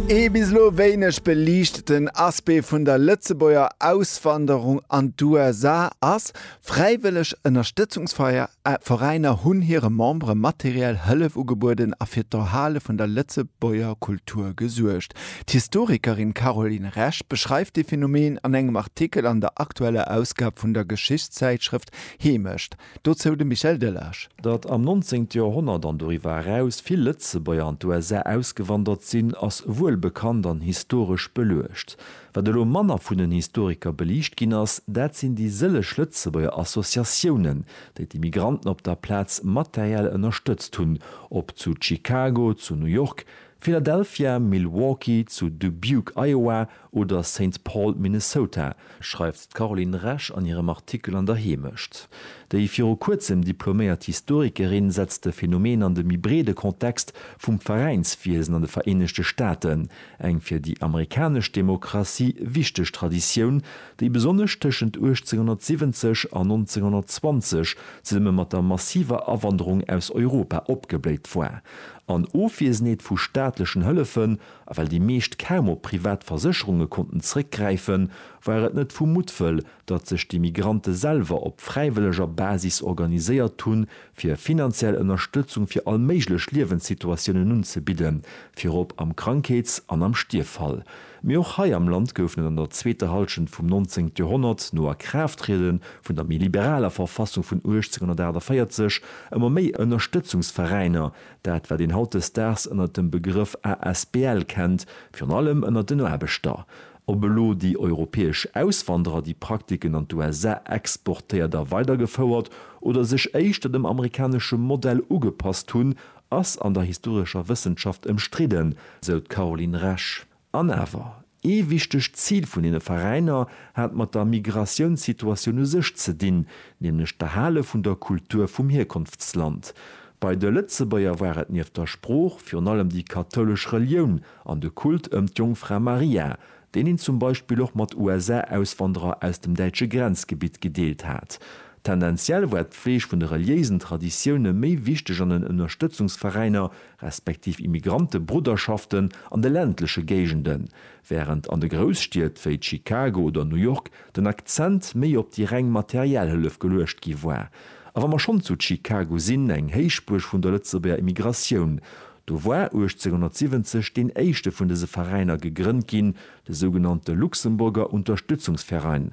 Ee bis elo wéineg beliichteten Aspect vun der Lëtzebuerger Auswanderung an d'USA ass, Fräiwëlleg Ënnerstëtzungsveräiner hunn hire Membere materiell Hëllef ugebueden a fir d'Erhale vun der Lëtzebuerger Kultur gesuergt. D'Historikerin Caroline Resch beschreift dee Phenomen an engem Artikel an der aktueller Ausgab vun der Geschichtszäitschrëft Heemecht. Dozou de Michel Delage. Datt am 19. Joerhonnert an doriwwer eraus vill Lëtzebuerger an d'USA ausgewandert sinn, ass wuel bekannt an historesch beluecht. Wat elo manner vun den Historiker beliicht ginn ass, dat sinn déi sëlleg Lëtzebuerger Associatiounen, déi d'Immigranten op der Plaz materiell ënnerstëtzt hunn, ob zu Chicago, zu New York, Philadelphia, Milwaukee, zu Dubuque, Iowa, Oder Saint Paul, Minnesota, schreift d'Caroline Resch an hirem Artikel an der Heemecht. Déi viru kuerzem diploméiert Historikerin setzt de Phenomen an de méi breede Kontext vum Veräinswiesen an de Vereenegte Staaten, eng fir déi amerikanesch Demokratie wichteg Traditioun, déi besonnesch tëschent 1870 an 1920 zesumme mat der massiver Awanderung aus Europa opgebléit war, an Ofwiesenheet vu staatlechen Hëllefen A well déi meescht kaum op privat Versécherunge konnten zréckgräifen, war et net vu Muttwëll, datt sech déi Migrante selwer op fräiwëlleger Basis organiséiert hunn, fir finanziell Ënnerstëtzung fir all méiglech Liewenssituatiounen unzebidden, virop am Krankheets an am Stierffall. Mee och hei am Land goufen et an der zweeter Hallschent vum 19. Joerhonnert, no Akraafttriede vun der méi liberaler Verfassung vun 1848, ëmmer méi Ënnerstëtzungsveräiner, Dat wat een hautdesdaags ënnert dem Begrëff asbl kennt, virun allem ënnert den Aarbechter. Ob elo déi europäesch Auswanderer déi Praktiken an d'USA exportéiert a weidergefouert oder sech éischter dem amerikanesche Modell ugepasst hunn, ass an der historescher Wëssenschaft ëmstridden, sou d'Caroline Resch. An awer, ee wichtegt Zil vun deene Veräiner hat mat der Migratiounssituatioun u sech ze dinn, nämlech d'Erhale vun der Kultur vum Hierkonftsland. Bei de Lëtzebuerger war et nieft der Sprooch virun allem déi kathoulesch Relioun an de Kult ëm d'Jongfra Maria, deen een zum Beispill och mat USA-Auswanderer aus dem däitsche Grenzgebitt gedeelt hat. Tendenziell war d'Pfleeg vun de reliéisen Traditioune méi wichteg an den Ënnerstëtzungsveräiner respektiv Immigrantebrudderschaften an de ländleche Géigenden, wärend an de Grousstied wéi Chicago oder New York den Akzent méi op déi reng materiell Hëllef geluecht gi war. A wa mer schonn zu Chicago sinn, eng Héichbuerg vun der Lëtzebuerger Immigratioun, do war 1870 deen éischte vun dëse Veräiner gegrënnt ginn, de sougenannte Luxemburger Unterstützungsverein,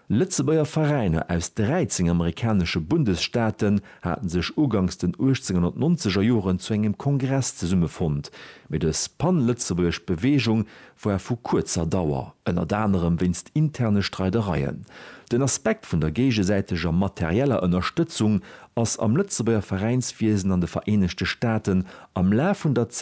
Lëtzebuerger Veräiner aus 13 amerikanesche Bundesstaaten haten sech ugangs den 1890er Joren zu engem Kongress zesummefonnt, mee dës pan-lëtzebuergesch Beweegung war vu kuerzer Dauer, ënnert anerem wéinst interne Streidereien. Den Aspekt vun der géigesäiteger materieller Ënnerstëtzung ass am Lëtzebuerger Veräinswiesen an de Vereenegte Staaten am Laf vun der